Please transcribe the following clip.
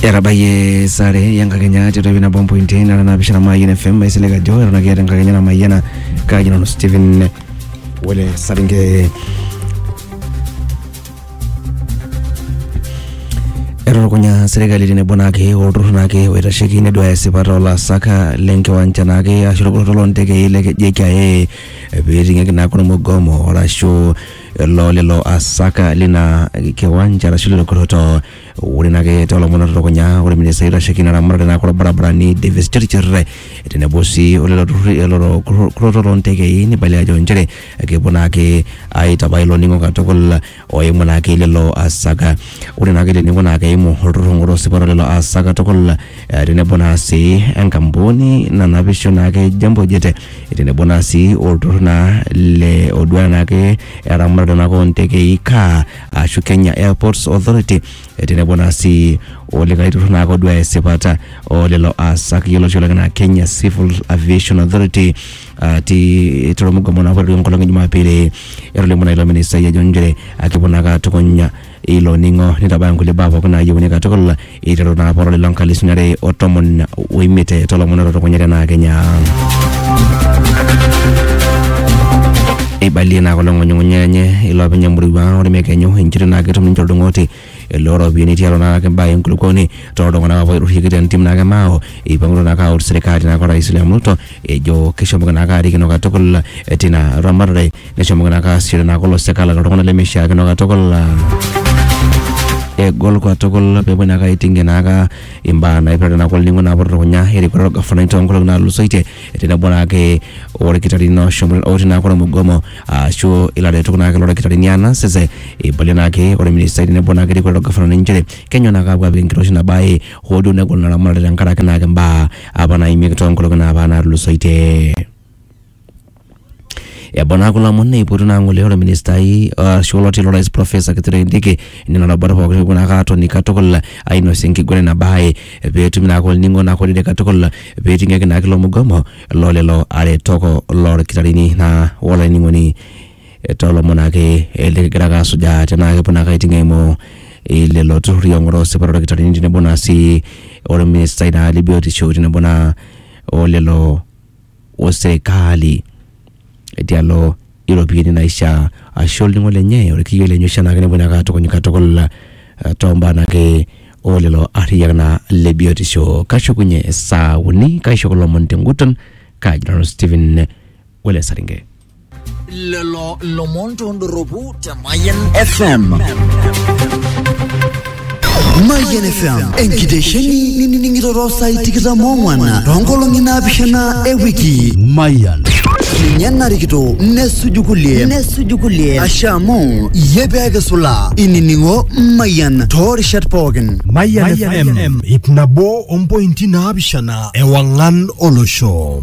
etabayie sare enkakenya tiatua ina bombo intain ara naapishana mayian fm maisilig ajo eton ake eeta enkakenya namayiana kaaji nanu stephen wele saringe etutukunya serkali tenebo naake olturrur naake oitasheki neduaya esipata olaasak lenkiwanja naake ashu olpoloto loontekei le JKIA pee eting'aki naake ormugomo arashu lo lelo asak lina kiwanja arashu lelo kurroto ore naake toolomon otutukunya ore ministai oitasheki ina ramatare naa kulo barabarani Davis Chirchir tenebo sii o lelo turruri lelo kurro- kurroto loontekei neibalia ajo nchere kepuo naake aitabai ilo ning'o katukul oimu naake lelo asak ore naake ele ning'o naa keimu olturrur ng'ura osipa loo lelo asak katukul eh, tenebo naa sii enkampuni nanapisho naake Jambo Jet tenebo naa sii olturrur naa le oduaya naake eramatare naake ontekei KAA ashu Kenya Airports Authority tenebo naa sii olikae turrur naake oduaya esipata olelo aasak yioloti oleng enaa Kenya Civil Aviation Authority atii tolmugomo naapa oleng enkolong e jumapili etolimuo naa ilo ministai ajo inchere akepuo naake atukuny. ilo ning'o nitabaya nkulie baa pookin naayieuni katukul eiteru naa poroli lo nkalisuni are o tomon oimiet tolomon ototokunyate naa kenya eibalie naa kulo ng'unyung'unya enye iloopeny emurua ore mekenyu inchito naa ketum ninche oldung'oti loo ropiyiani tialo naa ake imbaa enkulukuoni too ltung'anak apa oitasheiki te ntim naake mao eipangutua naake aut serikali naake orais William Ruto ejo keshomoki naake arikino katukul tina ramatare neshomoki naa kaasishore naa kulo sek alak iltung'anak lemeishiakino katukul ah, egol katukul peepuo naa kaiting'ie naaka imbaa naipirta naa kulo ning'o naapuo dukuya erikore orgafanai toonkolong'i naatulusoitie tenebo naake orkitarrini oshomo otii naake ormugomo ashu ilaretok naake lorkitarrini anas ese eibalie naake orministai tenebo naake erikore ilo gafanani inchere kenyoo naake apuo apik enkiroshi ina baye hoo duo negol ina ramatare tenkaraki naake imbaa apa naimieki toonkolong'i naapa naatulusoitie. Ebau naa kulo omon neipotu naa ng'ole ore ministai arashu oloti lorais Professor Kithure Kindiki nena rubat pookin nepuo naake aatoni katukul ainosie enkiguran ina bae peetumi naake olning'o naa olorere katukul peeting'ieki naake ilo mugomo loo lelo aretok lorkitarini naa wolainining'oni too lomon naake likigira ake asujaa tenaa kepuo naake aiting' eimu lelo turrurri oong'oroo esipata oldakitarini tenebo naa sii olministai naa le biotisho tenebo naa o lelo o serikali tialo iropiyiani naishaa ashu olning'o lenye orkiyo lenye oshi anaake nepuo naake atukuny katukul eh, tombaa naake olelo arriyiak naa le biotisho kashukunye saa uni kaishop ilomon tenguton kaji nanu Stephen Wele Saringe. lelo lomon tondoropu te Mayan FM. Mayian FM enkitesheni ninining'ito too saai tikitam oong'wan toonkolong'i naapishana e wiki. Mayian. Ninye narikito nesuju kulie nesuju kulie asha amu iyie pee kisulaa inining'o Mayian toorishat pookin. Mayian FM ip nabo ompointi naapishana ewang'an olosho.